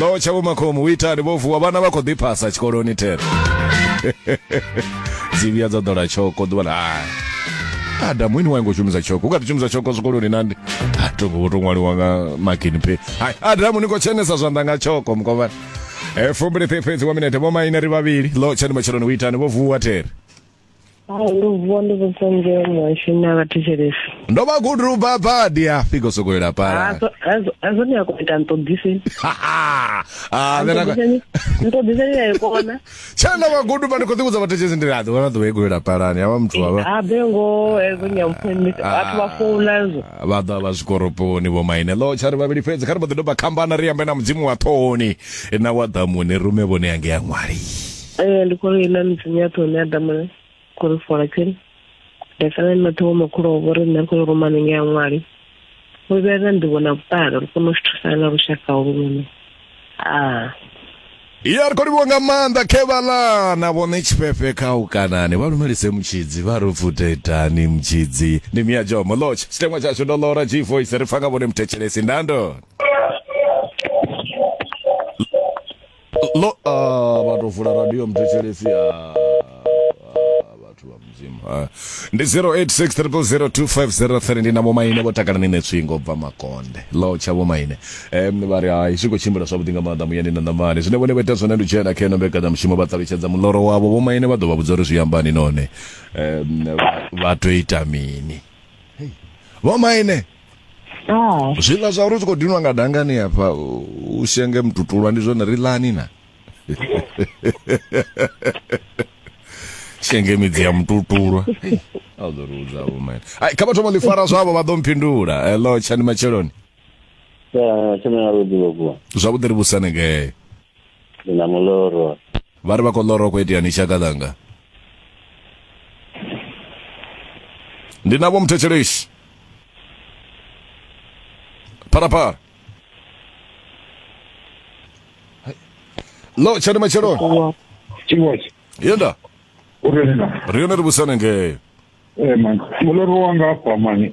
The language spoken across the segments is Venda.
lo tsha vhomakhomu u itani vho vuwa vhana vha khou ḓiphasa tshikoloni thero dzi vhuya dza ḓola tshoko ḓuvha ḽa hai adamu ini waingo shumisa tshoko u kha ḓi shumisa tshoko zwikoloni nandi a to ngo to ṅwaliwa nga magini phe hai adamu ni khou tshenesa zwanḓa nga tshoko mukovhana e fumbili fhefhedzi wa minete vho maine ri vhavhili lo tshani matsheloni u itani vho vuwa thero hai ndo vuwa ndi khou pfha muhasho na vhathetshelesi ndo vha gudu lu bva badi a fika u sokou ila pala hazwo ni a kona ita nṱoḓiseni nṱoḓiseni ya kona tshana na vhagudu vha ndi khou ḓivhudza vhathetshelesi ndi raḓi wana ḓuvha i khou ila palani havha muthu wavha a be ngo hezwo nyampfumi vhathu vha founa zwo vha ḓa vha zwikoroponi vho maine lo tshari vhavhili fhedzi kha ri mbo ḓi doba khambana ri ambe na mudzimu wa ṱhohoni na wa ḓamuni rume vhone yange ya ṅwali ee ndi khou ri ina midzimu ya ṱhoni adamule khou ri fola tsini nda sala ni maṱhogo makhulu o vhori nṋe ri khou ruma ninge ya ṅwali ri vhuya na nḓivho na vhuṱali ri kone u zwi thusana na lushaka ulu lune a ya ri khou livhiwa nga maanḓa khevalana vhone tshifhefe kha u kanani vha lumelise mutshidzi vha ri futetani mutshidzi ndi mia jomo lotch tshiteṅwa tshashu ndo lora g voice ri pfa nga vhone muthetshelesi ndandoni Lo, ah, vha tou vula radio muthetshelesi ah, ah, vhathu vha mudzimu ah. ndi 0863002503 ndi na vhomaine vho takala ni netswingo bva makonde lo tsha vhomaine um, vha ri hai zwi khou tshimbila zwavhuḓi nga maanḓa muyani na ṋamani zwine vhone vha ita zwone ndi u dzhena kha ino mbekanyamushumo vha ṱalutshedza muloro wavho vhomaine vha ḓo vha vhudza uri zwi ambani none um, vha- vha tou ita mini vhomaine Ah. zwiḽa zwa uri zwi khou dinwa nga dangani hafha u- u shenge mututulwa ndi zwone ri ḽani na shenge midzi ya mututulwa Hei, a u ḓo ri vhudza vho mene Ai, kha vha thoma ḽi fara zwavho vha ḓo mphindula hello tshani matsheloni Ah, tshena ya vhuḓi vhukuma. zwavhuḓi ri vhusanegee Ndi na muloro. Vha ri vha khou ḽora hu khou iteani shaka ḽanga. Ndi na vho muthetshelesi. Pharapara. Lo tshani matshelo. Chiwachi. Yenda. Uri na. Ri yone ri vhusana ngeo. Eh man, mulori wanga afha mani.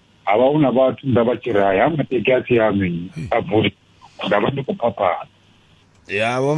ha vha hu na vhathu nda vha tshi ri haya mateki a si aṋu a bvuli nda vha ndi khou phaphana ya vho